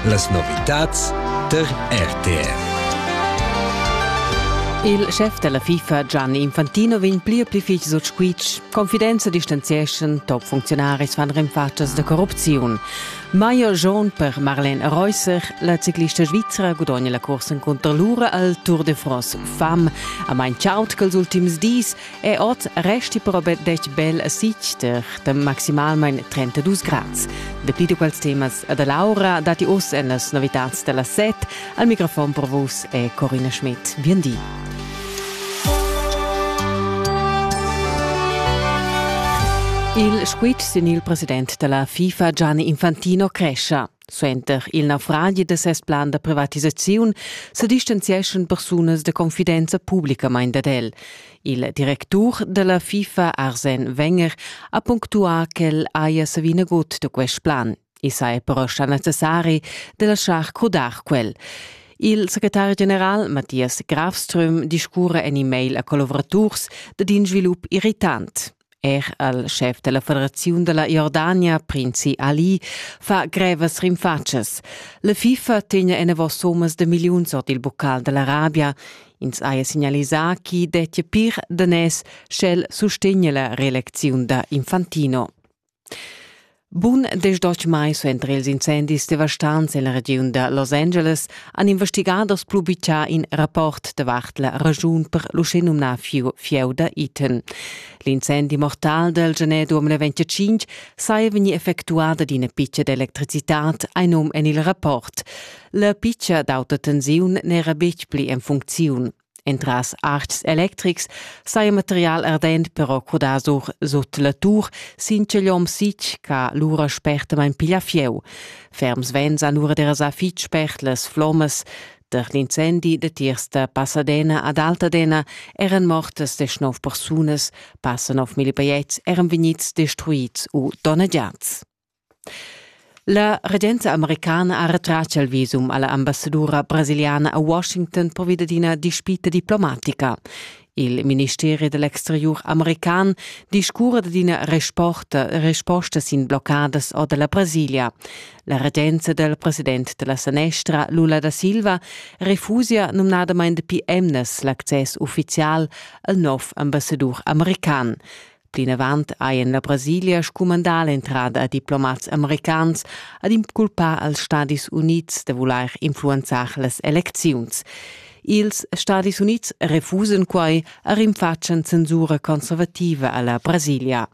Las novitads tar RTR. Il chef della FIFA Gianni Infantino vegn pli e pli fich sut squitsch. Confidenza distanzieschan top funzionaris fan renfatschas da corrupziun. Maio Jaune per Marlene Reusser, la ciclista svizra gudogna la corsa contro lura al Tour de France fam. A mein chaut quels ultims dis E ot resti però betg bel a Sichter da maximalmain 32 grads. Dapli da quels temas da Laura datti oz en las novitads da la set. Al microfon per vos è Corina Schmidt. Bien di. Il squitsch sin il president da la FIFA Gianni Infantino crescia. Suenter il naufragi da ses plan da privatisaziun sa distanzieschan persunas da confidenza publicamain dad el. Il directur da la FIFA Arsen Wenger ha punctuà ch'el haja savì nagut da quest plan. I saja però stà necessari da laschar crudar quel. Il secretari general Matthias Grafström discurra en e-mail a collavuraturs dad in svilup irritant. Er al schef della federaziun della Jordania, prinzi Ali, fa grevas rinfatschas. La FIFA tegna enavos sommas de milliuns ord il bocal dell'Arabia. Ins haja signalisà chi dettia pir danès sch'el sustegna la reelecziun da Infantino. Bun desdotg mai suenter ils incendis devastants en la regiun da Los Angeles han investigaders plu bitschà in rapport davart la raschun per l'uschenumnà fieu da Eaton. L'incendi mortal del gener 2025 saja vegnì effectuà da ina pitcha d'electricitad ein um en il rapport. La pitcha d'auta tensiun n'era betg pli en funcziun. Entras arts electrics saja material ardent però crudà sur sut la tur sin ch'igl hom sitg ch'ha lura spertamain piglia fieu. Ferms venzan lura derasà fitg spert las flommas. Der l'incendi da tiers da Pasadena ad Altadena eran mortas deschnov persunas, passa 9.000 baiets eran vegnids destruids u donnegiads. La regenza americana ha retratg il visum alla ambassadura brasiliana a Washington pervi dad ina dispita diplomatica. Il ministeri dell'exteriur american discurra dad ina resposta, resposta sin bloccadas or dalla Brasilia. La regenza del president della sanestra Lula da Silva refusia numnadamain dapi emnas l'access ufficial al nov ambassadur american. Plinavant hai en la Brasilia scumandà l'entrada a diplomats americans ad inculpar als Stadis Unids da vulair influenzar las elecziuns. Ils Stadis Unids refusan quai e rinfatschan censura conservativa a la Brasilia.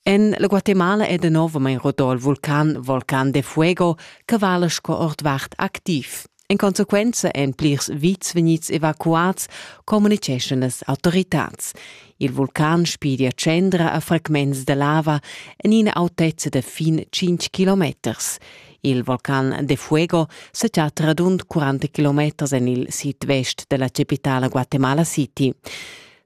En la Guatemala è danovamein rodol vulcan Volcan de Fuego che vala sco ordvart activ. In consequenza èn plirs vits vegnids evacuads, communiceschan las autoritads. Il vulcan spidia tschendra a fragments de lava en ina autezza de fin 5 kilometers. Il vulcan de Fuego se chat radund 40 kilometers en il sid-vest della capitala Guatemala City.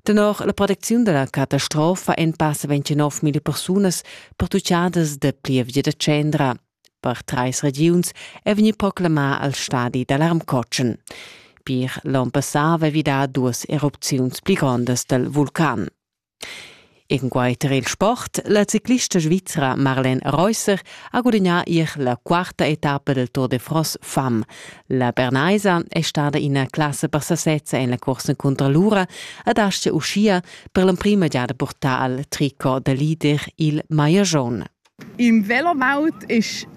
Tenor la protecziun da la catastrofa èn passa 29.000 persunas pertuccadas da plievgia da tschendra. Per trais regiuns è vegnì proclamà al stadi d'alarmcotschen. Pir l'onn passà aveva vi dà duas erupziuns pli grondas dal vulcan. Enquai tar il sport, la ciclista svizra Marlene Reusser ha gudagnà ier la quarta etappa del Tour de France fam. La Bernaisa è stada ina classa per sasezza en la corsa cunter l'ura ed aschia uschia per l'emprima giada purtà al tricot da leader il Maier Jaune. Im Velowelt ist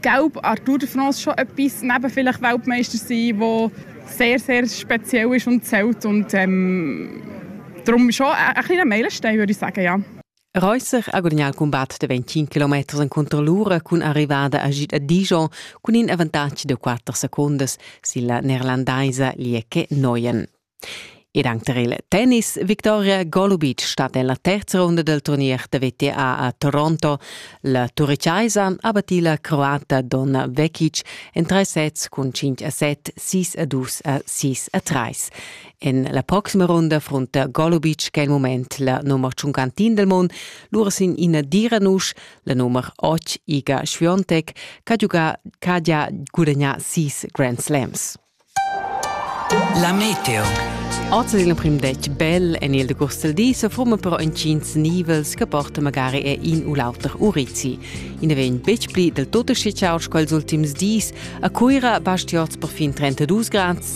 gelb an Tour de France schon etwas, neben vielleicht Weltmeister sein, der sehr, sehr speziell ist und zählt. Und ähm, darum schon ein, ein kleiner Meilenstein, würde ich sagen, ja. Reusser ha gudagnà il cumbat da 25 km encunter l'ura cun arrivada agid a Dijon cun in avantatg da 4 secundas silla neerlandaisa Lieke Neuyen. Ed anche tar il tennis Victoria Golubic stat nella terza ronda del turnier da VTA a Toronto. La turricaisa ha battì la croata Donna Vekic en tre sets cun 5 a 7, 6 a 2 a 6 a 3. En la proxima ronda frunta Golubic quel moment la nummer tschuncantin del mon, lura sin ina dira nusch, la nummer 8 Iga Schwiontek, che ha giugà che ha gudagnà sis Grand Slams. La Meteo Oz in prim detg bel en il decurs del di se forma però incins nivels che porta magari e in u l'auter urizi. In vegn betg pli del tutto schicaus quels ultims dis. A Cuira bastiot per fin 32 grads,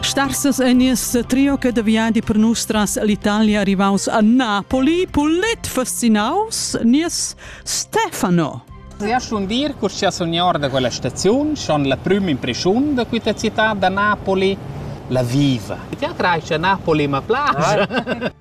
Star ses egnes trio che de viadi per nustras l'Italia arrivaus a Napoli, pulit fascinaus, nies Stefano. Sia schon dir cur sia signor da quella staziun schon la prima impressione da questa città da Napoli la viva. Ti atrai a Napoli ma place.